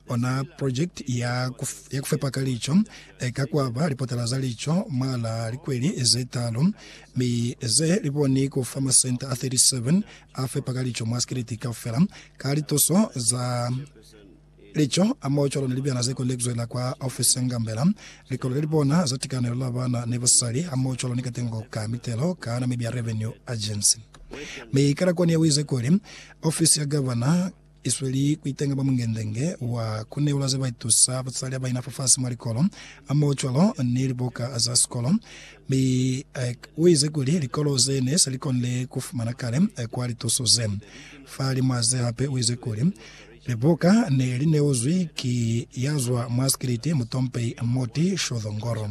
Ona projekiti ya ku fepa ka lico e ka kwaba lipotala za lico mwal'a likweli ze talu, mi ze li boni ku fa masenta a 37 a fepa ka lico mwa sikiliti kaufela ka lituso za lico hamoho cwalo ni libyana ze kondekizwe la kwa ofisi ya ngambela, likolo le li bona za tikanelo la bana ni basali hamoho cwalo ni katengo ka mitelo ka Namibia Revenue Agency. Mi Karakone u ize kuli, Ofisi ya Gavana, isweli kuitenga mwa mungende-nge wa kuneula zebaitusa butsalya baina fafasi mwa likolo, hamoho cwalo ni libuka za sikolo. Mi Ike uize kuli likolo ze ne se likonile kufumana kale kwa lituso ze. Fahalimw'a ze hape uize kuli, Libuka ne lineuzwi ki yazwa mwa sikiliti mutompehi Morty Shothongoro.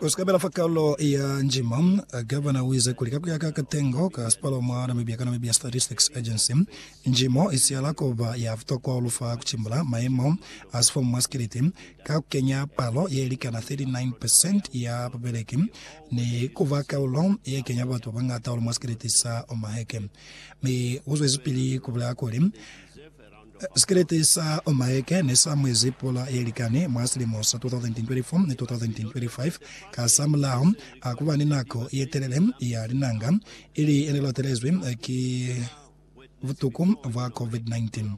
Ku si ka bela fa kalo ya njima, Gavana u ize kuli, ka ku ya ka katengo ka sipalo mwa Namibia ka Namibia Statistics Agency, njimo i sihala ku ba ya butokwa hahulu fa ku cimbula mayemo a sifomu mwa sikiliti, ka ku kenya palo ye likana 39 percent ya babeleki ni ku ba kaulo ye kenya batu ba bañata hahulu mwa sikiliti sa Omaheke. Mi u zwezipili ku bulaya kuli, Sikelete sa Mike ne sa mwezi pula ye likani mwa silimo sa 2024 ni 2025. Kasamulaho a ku ba ni nako ye telele ya linanga, ili ye ne latelezwi ki butuku bwa COVID-19,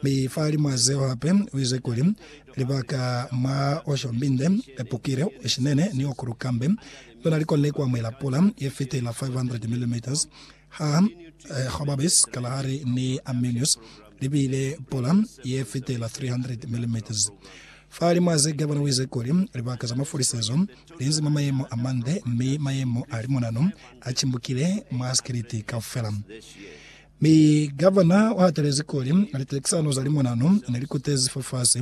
mi fahalimw'a zeo hape u ize kuli, Libaka mwa o shombinde, o pukile, o shinene ni o kulu kambe, lona li konile ku amuhela pula ye fitela 500 mm Ha Jobabes kalahali ni Arminius li bile pula ye fitela 300 milimeters. Fa limwa ze gavana wize kuli, Libaka za mafulisezo li nzi mwa mayemo a mande, mi mayemo a limonano a cimbukile mwa sikiliti kaufela. Mi gavana u hatelezi kuli, liteksano za limonano ne li kutezi fafasi,